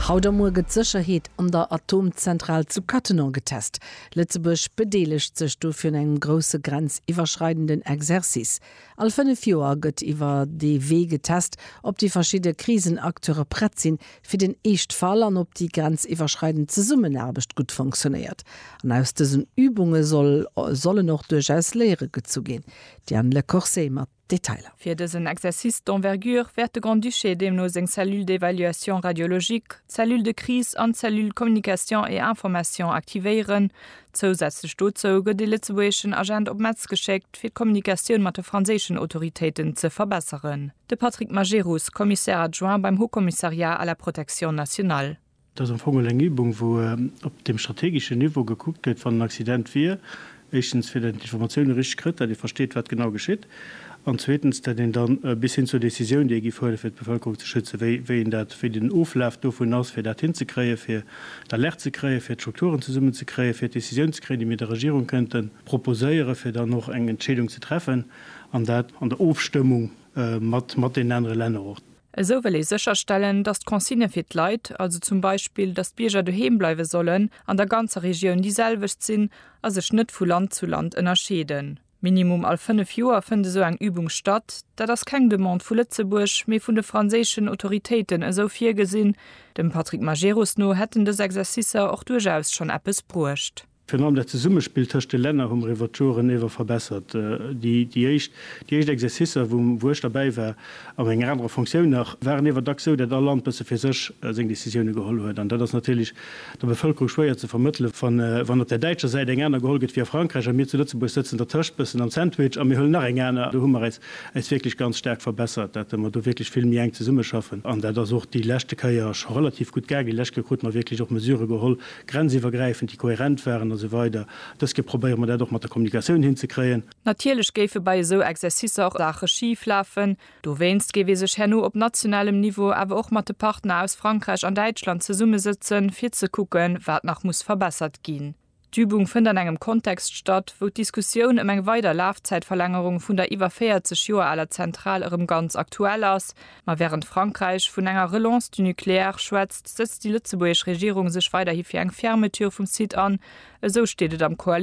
Haut a muer gëtt d'Sécherheet an der Atomzentral zu Cattenom getest. Lëtzebuerg bedeelegt sech dofir un engem grousse grenziwwerschreidenden Exercice. All fënnef Joer gëtt iwwer dee Wee getest, ob déi verschidde Krisenacteure prett sinn, fir den Eeschtfall an ob déi grenziwwerschreidend Zesummenaarbecht gutt fonctionéiert. An aus dësen Übunge sollen och duerchaus Léiere gezu ginn. D'Diane Lecourcey mat. Detailer. Fir dësen Exercice d'envergure wäert de Grand-Duché deemno seng Cellule d'évaluation radiologique, d'Cellule de crise an d'Cellule communication et information aktivéieren. Zousätzlech dozou gëtt ee lëtzebuergeschen Agent op Metz geschéckt, fir d'Kommunikatioun mat de franséischen Autoritéiten ze verbesseren. De Patrick Majerus, Commissaire adjoint beim Haut-Commissariat à la protection nationale. Et ass am Fong elo eng Übung, wou op deem strategeschen Niveau gekuckt gëtt, wann en Accident wier, éischtens, fir datt een d'Informatioune richteg kritt, datt ee versteet, wat genau geschitt, an zweetens, datt een da bis hin zur Décisioun, déi ee giff huelen, fir d'Bevëlkerung ze schützen, wéi, wéi een dat, wéi den Oflaf dovun ass, fir dat hinzekréien, fir d'Alerte ze kréien, fir d'Strukturen zesummen ze kréien, fir d'Décisioun ze kréien, déi mir der Regierung kënnte proposéieren, fir dann och eng Entscheedung ze treffen, an dat an der Ofstëmmung mat, mat deenen anere Länner och. Esou wëll ee sécherstellen, datt d'Consigne fir d'Leit, also zum Beispill, datt d'Bierger doheem bleiwe sollen, an der ganzer Regioun déi selwecht sinn a sech net vu Land zu Land ënnerscheeden. Minimum all fënnef Joer fënnt esou eng Übung statt. Dat ass keng Demande vu Lëtzebuerg, mee vun de franséischen Autoritéiten esou virgesinn. Dem Patrick Majerus no hätten dës Exercicer och duerchaus schonn eppes bruecht. Virun allem dat Zesummespill tëscht de Länner hu mer iwwert d'Joren ewer verbessert. Déi éischt Exercicer, wou ech derbäi war, a menger anerer Fonctioun nach, waren iewer dacks esou, dat all Land bësse fir sech seng Decisioune geholl huet. An dat ass natierlech der Bevëlkerung schwéier ze vermëttele wann op där däitscher Säit eng aner geholl gëtt wéi a Frankräich a mir zu Lëtzebuerg sëtzen dertëscht, bëssen am Sandwich, a mir huelen nach eng aner. Do hu mer äis wierklech ganz staark verbessert, dat mer do wierklech vill méi enk zesummeschaffen. An dat ass och déi leschte Kéier scho relativ gutt gaangen. Déi lescht Kéier krute mer wierklech och Mesurë geholl, grenziwwergräifend, déi kohärent waren a sou weider Dës Kéier probéiere mer dat och mat der Kommunikatioun hinzekréien. Natierlech géife bei esou Exercicer och Saache schif lafen. Dowéinst géif ee sech herno op nationalem Niveau awer och mat de Partner aus Frankräich an Däitschland zesummesëtzen, fir ze kucken, wat nach muss verbessert ginn. D'Übung fënnt an engem Kontext statt, wou d'Diskussioun ëm eng weider Lafzäitverlängerung vun der iwwer 40 Joer aler Zentral erëm ganz aktuell ass, Ma wärend Frankräich vun enger Relance du nucléaire schwätzt, sëtzt déi lëtzebuergesch Regierung sech weiderhi fir eng Fermeture vum Site an, esou steet et am Koalitiounsaccord.